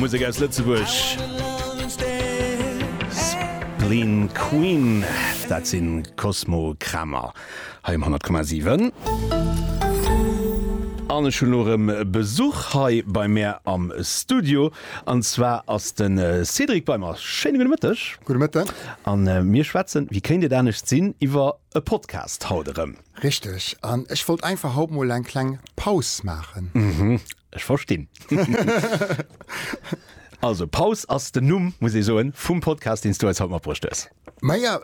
Musek aus Lëtzebuerg, Spleen Queen, dat sinn Cosmo Kramer hei um 100,7. An ech hunn elo erëm Besuch hei bei mär am Studio, an zwar ass de Cédric bei mer. Schéine gudde Mëtteg. Gudde Mëtteg. A mir schwätzen, wéi kéint et anescht sinn, iwwer. E Podcast haut erëm. Richteg, an ech wollt einfach haut mol eng kleng Paus maachen. Mhm, ech verstinn. Also Paus ass den Numm, muss ee soen, vum Podcast, deen s du eis haut matbruecht hues. Maja,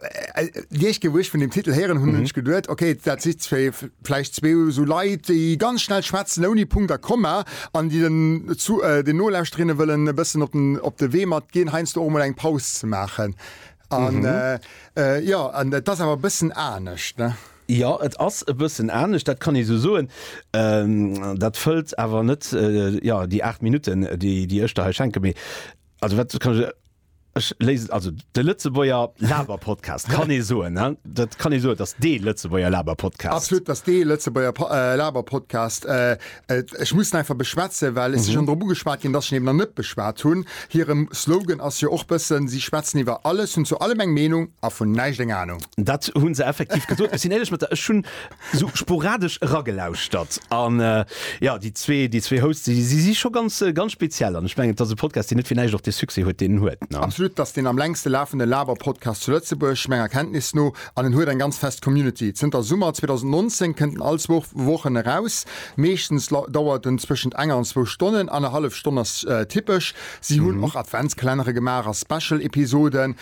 déi éischt Kéier, wou ech vun deem Titel héieren hunn, hunn ech geduet, ok, dat si vläicht zwee esou Leit, déi ganz schnell schwätzen, ouni Punkt a Komma, an déi den Nolauschterinnen wëllen e bëssen op de Wee matginn, heiansdo och emol eng Paus ze maachen. An jo, an et ass awer e bëssen anescht, ne? Jo, et ass e bëssen anescht, dat kann ee sou soen. Dat fëllt awer net, jo, déi aacht Minutten, déi ech der hei schenken, mee also wat kann ech, ech léisen et, also de Lëtzebuerger Laber-Podcast, kann ee soen, ne? Dat kann ee soen, et ass dee Lëtzebuerger Laber-Podcast. Absolut, et ass dee Lëtzebuerger Laber-Podcast. Ech muss en einfach beschwätzen, well et si schonn drop ugeschwat ginn, dass ech en eben nach net beschwat hunn. Hire Slogan ass jo och bëssen, si schwätzen iwwer alles, hunn zu allem eng Meenung a vun näischt eng Anung. Dat hu se effektiv gesot. Ech sinn éierlech mat der, ech hunn esou sporadesch eragelauschtert. An jo, déi zwee, déi zwee Hosts, déi si scho ganz, ganz speziell. An ech mengen, et ass e Podcast, deen net fir näischt och dee Succès huet, deen en huet. Absolut, et ass deen am längste lafende Laber-Podcast zu Lëtzebuerg, menger Kenntnis no. An en huet eng ganz fest Community. Zënter Summer 2019 kënnt en all zwou Wochen eraus. Meeschtens dauert en zwëschent enger an zwou Stonnen, annerhallef Stonn ass typesch. Si hunn och Adventskalenner gemaach a Special Episoden,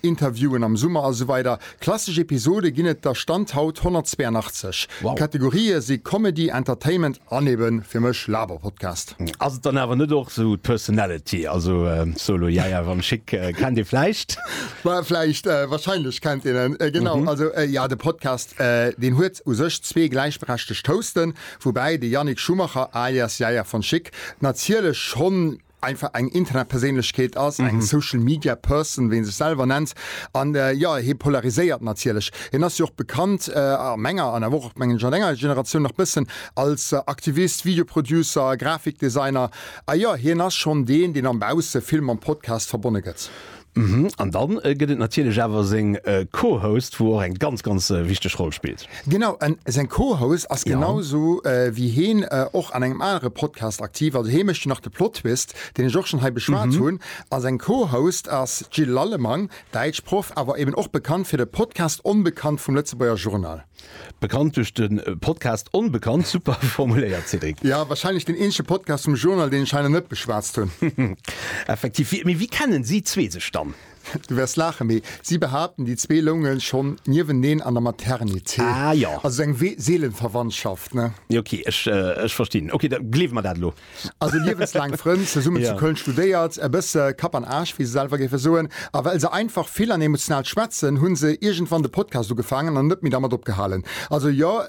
Interviewen am Summer a sou weider. Klassesch Episode ginn et der Stand haut 182. D'Kategorië si Comedy, Entertainment, An eben fir mech Laberpodcast. Ass et dann awer net och sou d'Personality? Also Solo Yay Yay Van Schick kennt ee vläicht? Well vläicht, wahrscheinlech kennt een en, genau. Also jo, de Podcast deen huet u sech zwee gläichberechtegt Hosten, woubäi de Yannick Schumacher alias Yaya Van Schick natierlech schonn einfach eng Internetperséinlechkeet ass, eng Social Media Person, wéi en sech selwer nennt. An jo, hie polariséiert natierlech. Hien ass jo och bekannt, a menger an awer och, mengen ech, a denger Generatioun nach bëssen, als Aktivist, Video Producer, Grafikdesigner. A jo, hien ass schonn deen, deen am Bausse vill mam Podcast verbonne gëtt. Mhm, an dann gëtt et natierlech awer seng Co-Host, wou och eng ganz, ganz wichteg Roll spillt. Genau, an seng Co-Host ass genau sou wéi hien och an engem anere Podcast aktiv, also hie mécht jo nach de Plottwist, deen ech och schonn hei beschwat hunn. A seng Co-Host ass d'Jill Lallemang, Däitschproff, awer eben och bekannt fir de Podcast Onbekannt vum Lëtzebuerger Journal. Bekannt duerch de Podcast Onbekannt, super formuléiert Cédric. Jo, wahrscheinlech deen eenzege Podcast vum Journal, deen ech hei nach net beschwatzt hunn. Effektiv. Wie, mee wéi kennen si zwee sech dann? Du wäers laachen, mee si behaapten, déi zwee loungen schonn nieweneen an der Maternité. Ah, jo. Also sou eng Seelenverwandtschaft, ne? Jo, okay, ech, ech verstinn. Okay, da gleewe mer dat elo. Also liewenslaang Frënn, zesummen zu Köln studéiert, e bësse Kapp an Aarsch, wéi se selwer géife soen. A well se einfach vill an emotional schwätzen, hunn se iergendwann de Podcast ugefaangen an net méi dermat opgehalen. Also jo,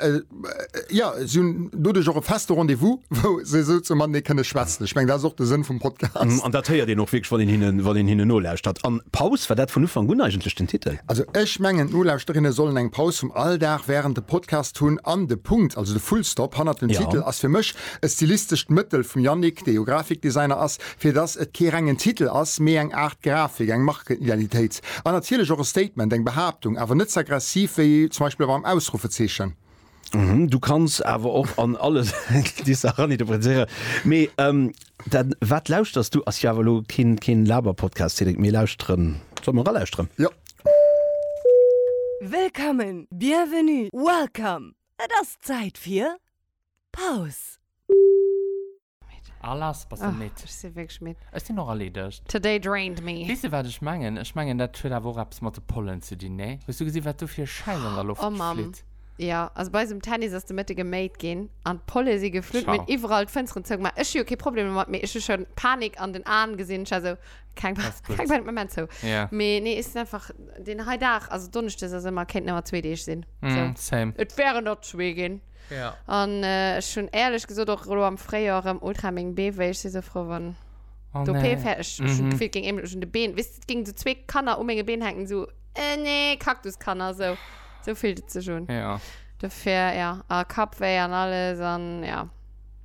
jo, si hunn doduerch och e feste Rendez-vous, wou se esou zu matenee kënne schwätzen. Ech mengen, dat ass och de Sënn vum Podcast. An dat héiert een och wierklech, wann een hinnen, wann een hinnen nolauschtert. An Paus, war dat vun Ufank un eigentlech den Titel? Also ech mengen, d'Nolauschterinnen sollen eng Paus vum Alldag wärend dem Podcast hunn an de Punkt, also de Fullstop hannert dem Titel ass fir mech E stilistescht Mëttel vum Yannick, dee jo Grafikdesigner ass, fir dass et kee rengen Titel ass, mee eng Aart Grafik, eng Markenidentitéit an natierlech och e Statement, eng Behaaptung, awer net ze aggressiv wéi zum Beispill mam Ausruffezeechen. Du kanns awer och an alle déi Saache raninterpretéieren. Mee dann, wat lauschters du? Ass jo awer elo keen Laberpodcast, Cédric. Mir lauschteren. Solle mer eralauschteren? Jo. Wëllkommen, bienvenue, welcome, et ass Zäit fir. Paus. Al ass bass de midd? Ech si wierklech midd. Ech sinn och erleedegt. Today drained me. Weess de wat ech mengen? Ech mengen dat huet awer och eppes mat de Pollen ze dinn, nee? Hues du gesinn wat do fir e Schäin an der Loft flitt? Oh Mamm, jo. Also bei eis um Tennis ass de Mëtte geméit ginn an d'Polle si geflutt. Mir hunn iwwerall d'Fënsteren zougemaach. Ech hu jo kee Problem domat, mee ech hu schonn Panik an den Aen gesinn. Ech war esou, keng Panik, keng Panik, mir maachen zou. Mee nee, ech sinn einfach deen hei Dag, also Donneschdes ass ëmmer, kéinten ëmmer zwee Deeg sinn. Et wären der zwee ginn. Ja. An äh, ech hunn ehrlech gesot och elo am Fréijoer erëm ultra meng Beef, wéi ech si sou frou, wann Oh, d'OP nee. fäerdeg ech hunn Mhm. d'Gefill, et géing eemlech un de Been, weess de, et géing sou zwee Kanner u menge Been hänken, sou äh, nee, Kaktuskanner, sou. Sou fillt et sech un. Ja. Dofir, ja, a Kappwéi an alles an ja.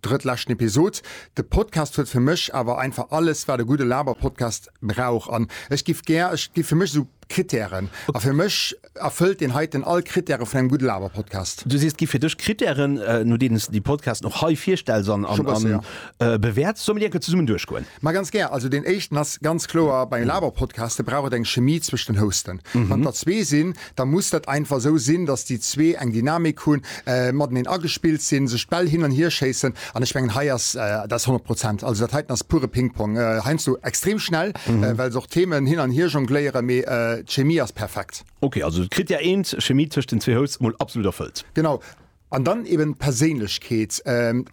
Drëttleschten Episod. De Podcast huet fir mech awer einfach alles wat e gudde Laberpodcast brauch an ech giff gär, et gi fir mech esou Kritären a fir mech erfëllt deen heiten all Kritäre vun engem gudde Laberpodcast. Du sees et gi fir dech Kritären no deenen s de déi Podcasten och hei virstells an bewäerts. Solle mir déi enke zesummen duerchgoen? Ma ganz gär. Also deen éischten ass ganz kloer, bei Laberpodcaste brauch et eng Chemie zwëscht den Hosten. Wann der zwee sinn, da muss dat einfach esou sinn, datt déi zwee eng Dynamik hunn, mateneen agespillt sinn, sech d'Bäll hin an hier schéissen an ech mengen hei ass dat 100 Prozent. Also dat heiten ass pure Ping-Pong, heiansdo extrem schnell, well se och Themen hin an hier jongléieren, mee d'Chemie ass perfekt. Ok, also d'Krittär eent, Chemie tëscht den zwee Hosts, mol absolut erfëllt. Genau, An dann eben d'Perséinlechkeet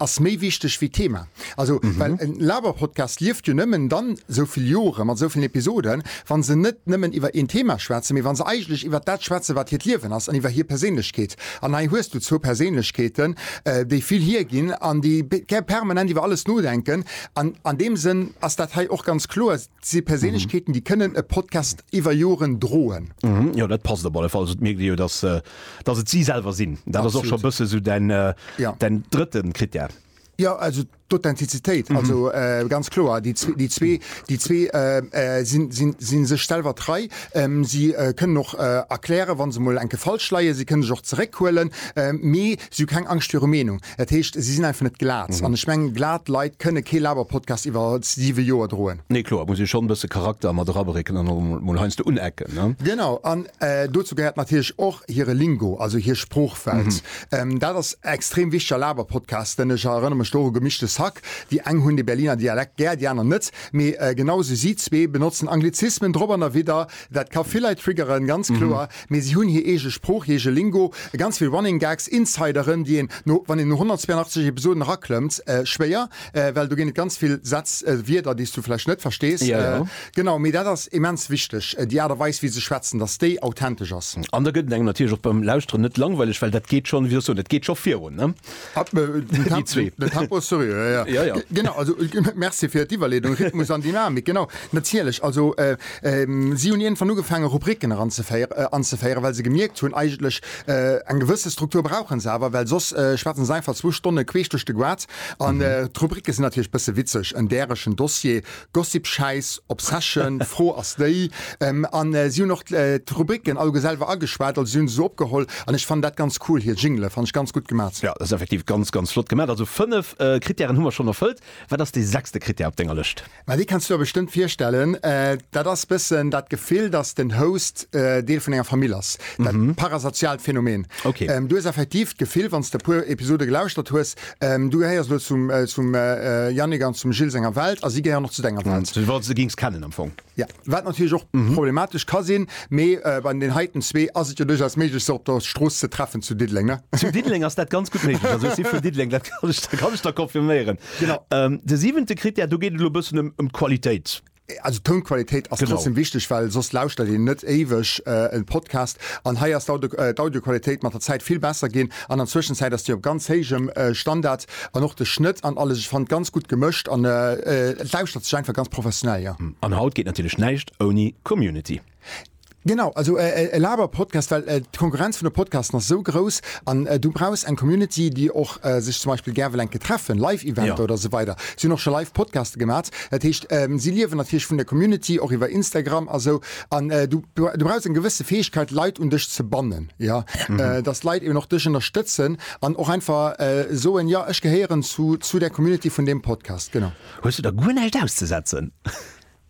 ass méi wichteg wéi d'Thema. Also well e Laber-Podcast lieft jo nëmmen dann esou vill Jore mat esou villen Episoden, wa se net nëmmen iwwer een Thema schwätzen, mee wa se eigentlech iwwer dat schwätzen, wat hiert Liewen ass an iwwer hir Perséinlechkeet. An hei hues du zwou Perséinlechkeeten, déi vill hierginn an déi permanent iwwer alles nodenken. An an deem Sënn ass dat hei och ganz kloer, et si Perséinlechkeeten, déi kënnen e Podcast iwwer Joren droen. Jo, dat passt op alle Fall. Also et mierkt ee jo, dass Dass et si selwer sinn, dat ass och scho bësse sou däin drëtte Krittär. Jo, also d'Authentizitéit, also ganz kloer. Déi zwee si sech selwer trei. Si kënnen och erklären, wa se mol enke falsch leien. Si kënne sech och zeréckhuelen, mee si hu keng Angscht viru Meenung. Dat heescht, si sinn einfach net glat. An ech mengen, glat Leit kënne kee Laber-Podcast iwwer siwe Joer droen. Nee, kloer, et muss ee schonn e bësse Charakter mat erabrécken an och emol heiansdo unecken, ne? Genau. An dozou gehéiert natierlech och hire Lingo, also hir Sproochwelt. Dat ass extrem wichteg a Laber-Podcasten. Ech erënnere mech do u Gemischtes Hack. Déi eng hunn de Berliner Dialekt gär, déi aner net. Mee genau esou, si zwee benotzen Anglizismen drop an derwidder. Dat ka vill Leit triggeren, ganz kloer, mee si hunn hir eege Sprooch, hir eege Lingo, ganz vill Running Gags, Insideren, déi een no, wann een no 182 Episoden eraklëmmt, schwéier, well do ginn et ganz vill Sätz, Wierder, déi s du vläicht net verstees. Genau, mee dat ass immens wichteg, déi Aart a Weis, wéi se schwätzen, dass déi authentesch ass. An da gëtt et engem natierlech och beim Lauschteren net langweileg, well dat geet schonn, wéi soll ech soen, et geet scho virun. Merci fir d'Iwwerleedung, Rhythmus an Dynamik, genau, natierlech. Also si hunn iergendwann ugefaange Rubriken eranzeféieren, anzeféieren, well se gemierkt hunn, eigentlech eng gewësse Struktur brauche se awer, well soss schwätze se einfach zwou Stonne queesch duerch de Goaz. An d'Rubrike sinn natierlech e bësse witzeg, en däregen Dossier, Gossip, Schäiss, Obsession, Fro ass déi, a si hunn och d'Rubricken alleguer selwer ageschwat, also si hunn se esou opgeholl, an ech fannen dat ganz cool, hir Jingele fanne ech ganz gutt gemat. Jo, dat ass effektiv ganz, ganz flott gemat. Also fënnef Krittären hu mer schonn erfëllt. Wat ass dee sechste Krittär op denger Lëscht? Ma dee kenns du der bestëmmt virstellen, dat ass bëssen dat Gefill, datt den Host Deel vun enger Famill ass, dat parasoziaalt Phänomen. Du hues effektiv d'Gefill, wann s de e puer Episode gelauschtert hues, Du gehéiers elo zum zum Yannick an zum Gilles senger Welt a si gehéieren och zu denger Welt. Du wollts se géings kennen am Fong. Ja, wat natierlech och problematesch ka sinn, mee bei den heiten zwee ass et jo duerchaus méiglech se op der Strooss ze treffen zu Diddeleng, ne? Zu Diddeleng ass dat ganz gutt méiglech, also ech si vun Diddeleng, dat kann ech der confirméieren. Genau. De siwente Krittär, do geet et elo e bëssen ëm d'Qualitéit. Also d'Tounqualitéit ass trotzdem wichteg, well soss lauschtert een net éiweg e Podcast. An hei ass d'Audioqualitéit mat der Zäit vill besser ginn. An an Zwëschenzäit ass déi op ganz héijem Standard. An och de Schnëtt an alles, ech fannen ganz gutt gemëscht an et lauschtert sech einfach ganz professionell, jo. An haut geet natierlech näischt ouni Community. Genau, also e Laber-Podcast, well d'Konkurrenz vun de Podcasten ass esou grouss an du brauchs eng Community, déi och sech zum Beispill gär wëll eng Kéier treffen, Live-Eventer oder esou weider. Si hunn och scho live Podcaste gemaat. Dat heescht, si liewen natierlech vun der Community, och iwwer Instagram a sou. An du brauchs eng gewësse Fäegkeet, Leit un dech ze bannen, jo, dass d'Leit eben och dech ënnerstëtzen an och einfach soen, Jo, ech gehéieren zu der Community vun deem Podcast. Genau. Hues du da guer näischt auszesetzen?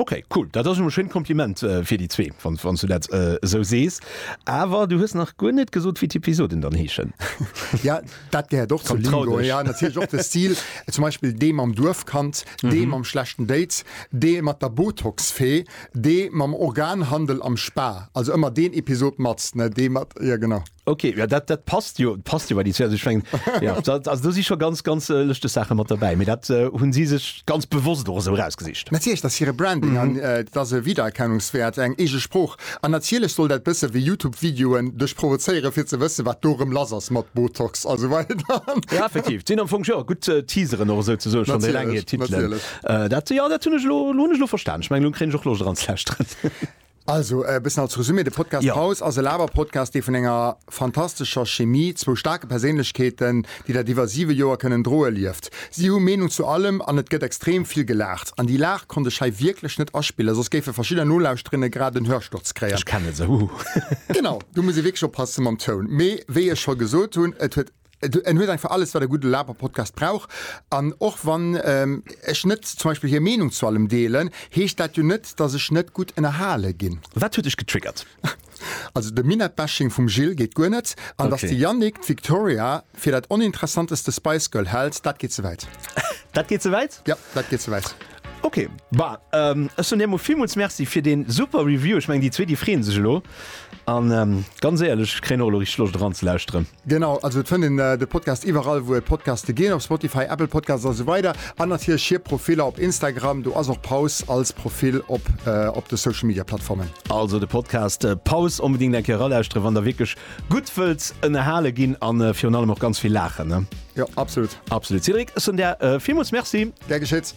Ok cool, dat ass jo e schéint Kompliment fir déi zwee, wann s du dat esou sees. Awer du hues nach guer net gesot, wéi d'Episoden dann heeschen. Jo, dat gehéiert och zur Lingo, jo natierlech och de Stil, zum Beispill dee mam Duerfkand, dee mam schlechten Date, dee mat der Botox-Fee, dee mam Organhandel am Spa, also ëmmer deen Episod mat, dee mat, jo genau. Okay, ja, dat, dat passt jo passt jo bei die Zwer sech schwngen ja, also du si schon ganz ganz äh, lechte Sache mat dabei mir dat äh, hunn si sech ganz bewusst och so rausgesicht Natierlech dat hire Branding mhm. an äh, dat se Wiedererkennungswert eng ege Spruch an natierlech soll dat bësse wie Youtube Videoen duch provozeiere fir ze wësse wat dorem lass ass mat Botox also ja, effektiv sinn am Fong ja, gut äh, teaseren oder so ze so schon lang Titel äh, dat ja dat hunn ech lo, lo, lo verstand ich mein, lo kre och lo dran zestre. Also e bëssen als Resumé, de Podcast Paus ass e Laber-Podcast, dee vun enger fantastescher Chemie, zwou staarke Perséinlechkeeten, déi dat iwwer siwe Joer kënnen droe, lieft. Si hu Meenung zu allem an et gëtt extrem vill gelaacht. An déi Laach konnt ech hei wierklech net aspillen, soss géife verschidder Nolauschterinnen grad en Hörsturz kréien. Ech kennen se, huhu. Genau, do muss ee wierklech oppasse mam Toun. Mee wéi ech scho gesot hunn, et huet. En huet einfach alles wat e gudde Laberpodcast brauch. An och wann ech net zum Beispill hir Meenung zu allem deelen, heescht dat jo net, datt ech net gutt ënnerhale ginn. Wat huet dech getriggert? Also de Minett-Bashing vum Gilles geet guer net. An datt de Yannick d'Victoria fir dat oninteressanteste Spice Girl hält, dat geet ze wäit. Dat geet ze wäit? Jo, dat geet ze wäit. Ok, bah, ähm, ech soen dir emol villmools Merci fir dee super Review. Ech mengen, déi zwee, déi freeën sech elo. An ähm, ganz éierlech, ech kréien och elo richteg Loscht eran ze lauschteren. Genau, also et fënnt een de Podcast iwwerall, wou et Podcaste ginn, op Spotify, Apple Podcasts a sou weider. An natierlech hir Profiller op Instagram, do ass och Paus als Profil op op de Social Media Plattformen. Also de Podcast Paus onbedéngt eng Kéier eralauschtere wann der wierklech Gutt wëlls ënnerhale ginn a virun allem och ganz vill laachen, ne? Jo, absolut. Absolut. Cédric, ech soen der villmools Merci. Gär geschitt.